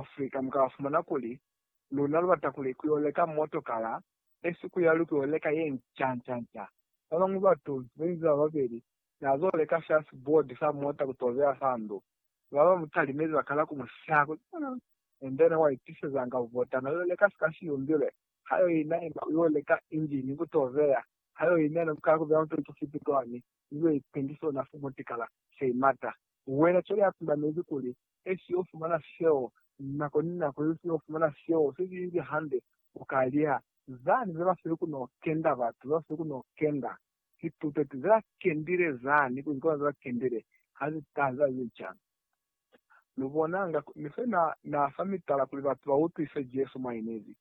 Africa mu ka fumana kuli, luna lu bata kuli ku yo leka motokala, esi ku yali ku yo leka ye nca nca nca. Ba bañwi batu be nzi ba babeli na zo leka shasi board sa mota ku to beya sa ndu. Ba ba mu talimezi ba kala ku mu siha kuli, Aa! Endene wa itisezanga bubota na yo leka sika si yumbilwe, ha yo ina ima u yo leka injini ku to beya, ha yo ina ne ku kala ku beya mutoli ku fiti kwani. ni yo ipendi sona fo mutikala se imata. Wena cwale ha tundamezi kuli, Esi yo fumana seo, nako ni nako esi yo fumana seo se si inzi hande, u ka lya. Zani ze ba sili ku no kenda, batu ze ba sili ku no kenda, ki tuteti ze ba kendile zani, ku zikolo ze ba kendile, ha zi taha ze ba ize cani. Lu bona, nga ni fe na, na fa mitala kuli batu ba utwise Jesu mwa inezi.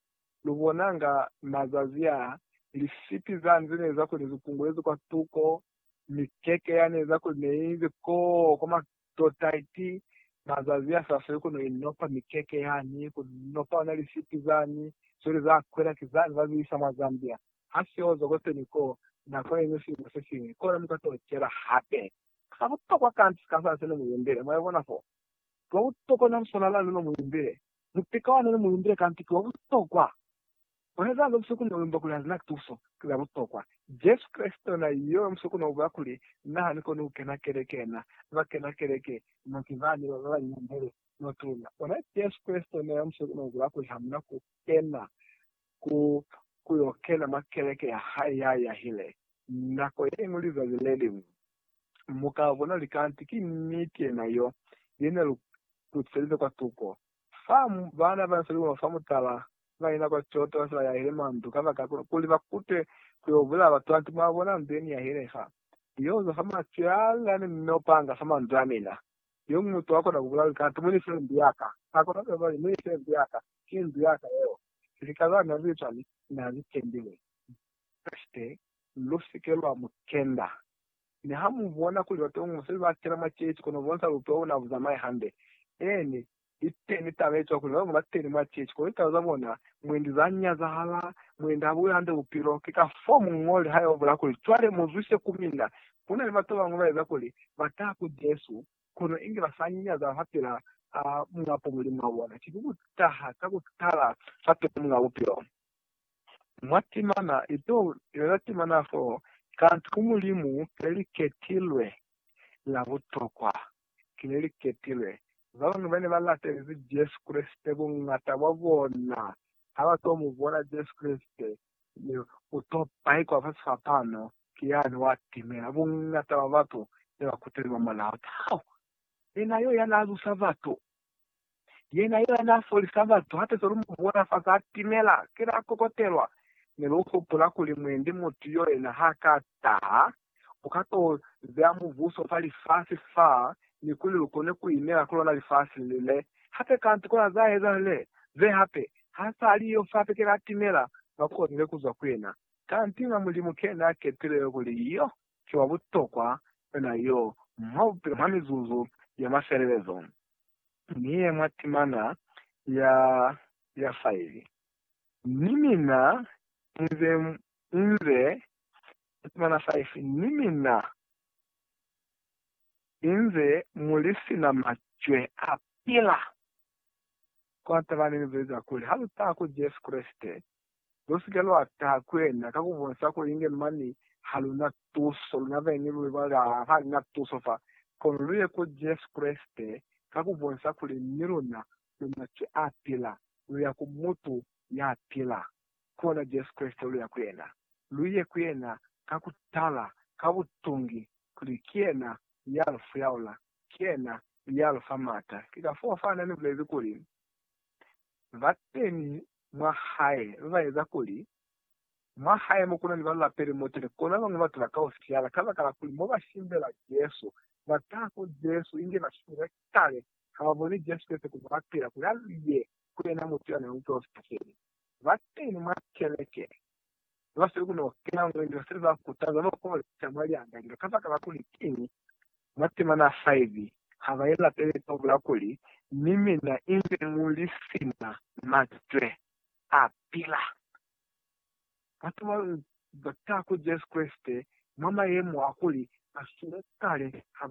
Lu bonanga mazazi aa, lisipi za nze ne eza kuli ne zi kungulezi kwa tuko, mikeke ya ne eza kuli ne inzi koo kwa matota iti mazazi a sa feli ku no inopa mikeke yani, ku nopa ona lisipi zani, cwale za kwela ki zani ba zi isa mwa Zambia. Ha si oza kwateni ko nako ye ñwi silimo se siñwi, kona mu ka to cela hape. Sa butokwa kanti ka sa se ne mu imbile, mwa ibona foo, lwa butokwa na lu swanela lu no mu imbile. Mupika wa noni mulumbile ka mpiki wa butokwa. Kueza zo busokoni na kuimba kuli hazina tuso, ki za butokwa. Jesu Kreste yona yo musoko na ubulela kuli, Na hani koni kukena keleke na. Ba kena keleke no ki bani ba ba nyimbele no tuna. Bona Jesu Kreste yona yo musoko na ubulela kuli hamuna ku kena ku ku yo kena mwa keleke ya hae ya yahile nako ye ñwi lizazi le liñwi. Mu ka bona luli kanti ki niti yena yo, yena lu ku tiselize kwa tuko. Fa baana ba nsa lilimo fa mutala ba yena kwa Kyoto ba se ba yahile mwa ndu kabaka kuli ba kute ku yo bulaya batu kanti mwa bona ndu ye ni yahile fa. Ni yo zwa fa macwe a lila ne ni no panga fa mandu a mina. Yoñi mutu a kona ku bulaya luli kanti mu ni file ndu ya ka. A kona ku yo bula kuli, Mu ni file ndu ya ka. Ki ndu ya ka yeo. Lika za ne lu li cwani? Na li kendile. Kashike Lu si ke lwa mu kenda. Niha mu bona kuli batongo se ba kena mwa ceeci kono bonsa bupi wa bona bu zamai hande. Eeni, iteni taba ye cwa kuli babañwi ba teni mwa ceeci kono litaba za bona mwendi za nyazahala, mwendi ha bu yo hande bupilo. Ki ka fo muñoli ha yo bula kuli, Cwale mu zwise ku mina. Ku na ni batu babañwi ba eza kuli ba taha ku Jesu, kono inge ba sa nyaza fapil'a Muñ'a Bupilo muli mwa bona. Ki ku taha ka ku tala fapil'a Muñ'a Bupilo. mwa timana ito lwela timana fo, kanti ku Mulimu kileliketilwe la butokwa, kileliketilwe. Babañwi bane ba latelezi Jesu Kreste, bungata bwa bona ha ba to mu bona Jesu Kreste, mi u to paikwa fa sifapano ki yani wa timela bungata bwa batu ne ba kuteli mwa mulao. Taho! Yena yo ya na zusa batu Yena yo n'a folisa batu hape ze lu mu bona fa za timela, ki la kokotelwa, mi lu hupula kuli mwendi mutu yo yena ha ka taha, u ka t'o beya mubuso fa lifasi fa, ni kuli lu kone ku inela ku lona lifasi le le. Hape kanti ku na za ezahala le ze hape, ha s'a li yo fa pe ki la timela, ba kolile ku zwa ku yena. Kanti n'a Mulimu ke n'a kepile yo kuli yo ki wa butokwa yona yo mwa bupilo mwa mizuzu ya mafelelezo ni ye mwa timana ya ya faili. Ni mina inze inze mwa timana faifi ni mina inze muli sina macwe a pila, kwa taba ni lu zweza kuli ha lu taha ku Jesu Kreste Lusike lwa taha ku yena ka ku bonisa kuli inge mane ha lu na tuso, luna beni lu ibalelwa ha ni na tuso fa. Kono lu ye ku Jesu Kreste ka ku bonisa kuli ni luna lu maci a pila. Lu ya ku Mutu ya pila, ki ona Jesu Kreste. Lu ya ku yena. Lu ye ku yena ka ku tala, ka butungi, kuli ki yena ya lu fuyaula, ki yena ya lu fa mata. Ki kafoo fa na ni bulezi kuli, Ba teñi mwa hae ba eza kuli mwa hae mo ku na ni ba lapeli mo tele kona bañwi ba tula ka u siala kabakala kuli mo ba simbela Jesu ba taha ku Jesu inge ba shwile kale ha ba boni Jesu Kreste kuli wa pila kuli a lu ye ku yena mutu ya na ni Muprofita feli. Ba teñi mwa keleke Ba si lukuni ku kena mwa lindwa se ba kutaza no ku leca mwa lihanga lilo kabakala kuli kiñi? Mwa temana 5, ha ba ilapeli ka ku bula kuli, Mi mina inze mu li sina macwe a pila. Batu ba lu ba tala ku Jesu Kreste mwa mayemo a kuli ba sumukale ha ba